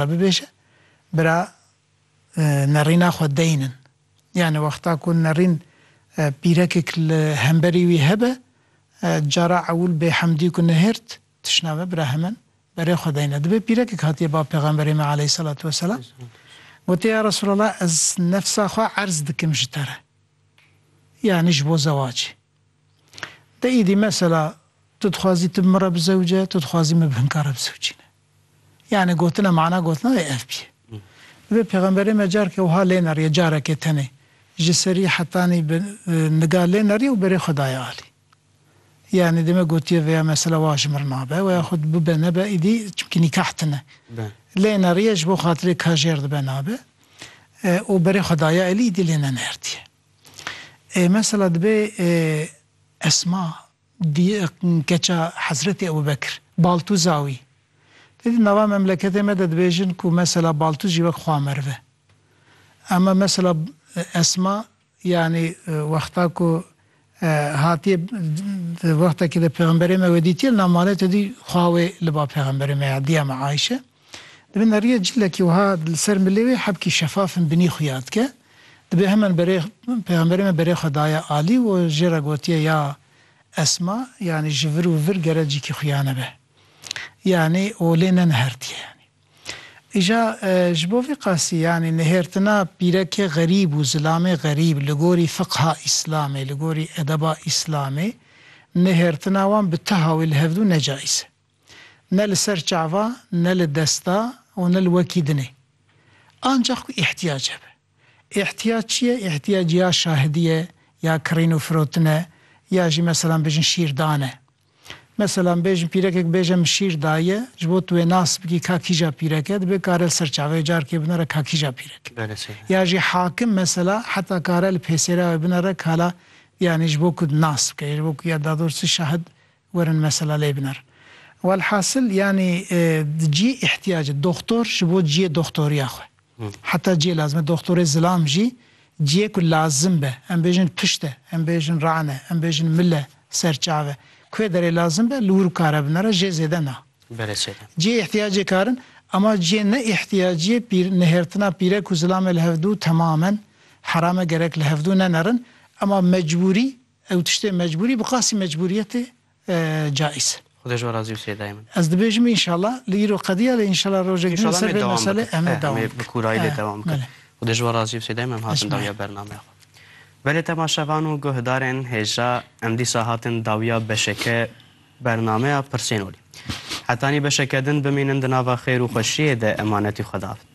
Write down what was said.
Xwe bibêje, bira nerîna xwe deyn in. Yanî wexta ku nerîn pîrekek li hemberî wî hebe, cara ewil bê hemdî ku nihêrt, tişna me bira hemen berê xwe deyne. Dibe pîrekek hatiye ba Pêxemberê me aleyhîsselatu wesselam, gotiye ya Resûlallah ez nefsa xwe erz dikim ji te re. Yanî ji bo zewacê. De îdî mesela tu dixwazî tu bi min re bizewce, tu dixwazî min bi hin kare bizewcîne. Yanî gotina mana gotina wê ev bîye. Divê pêxemberê me careke wiha lê neriye careke tenê ji serî hetanî bi niga lê neriye û berê xwe daye alî. Yanî dime gotiye vêya mesela wa ji mir nabe weya xwe bibe nebe îdî çimkî nîkah tine. Lê neriye ji bo xatirê kajêr dibe nabe û berê xwe daye alî îdî lê nenerdiye. Ê mesela dibê Esma Di keça Hezretê Ebubekir, Baltûza wî. Lê di nava memleketê me de dibêjin ku mesela Baltûz jî wek xwa meriv e. Ema mesela Esma yanî wexta ku hatiye di wextekî de pêxemberê me wê dîtiye li nav malê tedî xwa wê li ba pêxemberê me ya diya me Ayşe. Di bin deriyê cilekî wiha li ser milê wê hebkî şefaf in binî xuya dike. Dibe heman berê Pêxemberê me berê xwe daye alî û jê re gotiye ya Esma yanî ji vir û vir gere cîkî xuya nebe. Yanî û lê nenihertiye yanî. Îja ji bo vî qasî yanî nihêrtina pîrekê xerîb û zilamê xerîb li gorî fiqha Îslamê, li gorî edeba Îslamê nihêrtina wan bi tiha wê li hevdû necayîz e. ne li ser çava, ne li desta û ne li wekî din e. Ancax ku îhtiyac hebe. Îhtiyac çi ye? Îhtiyac ya şahidî ye, ya kirîn û firotin e, ya jî meselan bêjin şîrdan e. Meselan bêjin pîrekek bibêje min şîr daye, ji bo tu wê nas bikî ka kîja pîrek e, dibê kare li ser çavê wê carkê binare ka kîja pîrek e. Ya jî hakim mesela heta kare li pêsêra wê binare ka la yanî ji bo ku nas bike, ji bo ku ya dador çi şahid Werin mesela lê biner. Welhasil yanî di cî îhtiyacê doxtor ji bo ciyê doxtoriya xwe. Heta ciyê lazim e doxtorê zilam jî ciyê ku lazim be em bêjin pişt e, em bêjin ran e, em bêjin mil e, ser çav e. Kuê derê lazim be li wir û kare binere jê zêde na. Ciyê îhtiyacê karin ema ciyê ne îhtiyaciyê pîr nihêrtina pîre ku zilamê li hevdu temamen heram e gerek li hevdu nenerin ema mecbûrî Ew tiştê mecbûrî bi qasî mecbûriyetê caîz e. Xwedê ji we razî û sê dayê min. Ez dibêjim înşallah li îro qediya lê înşallah rojek din li ser vê meselê em ê dewam bikin. Em ê bi kûrayî lê dewam bikin. Xwedê ji we razî û sê dayê min em hatin dawiya bernameya xwe. Belê temaşevan û guhdarên hêja em dîsa hatin dawiya beşeke bernameya Pirsên olî. Hetanî beşeke din bimînin di nava xêr û xweşiyê de emanetî xwe dabin.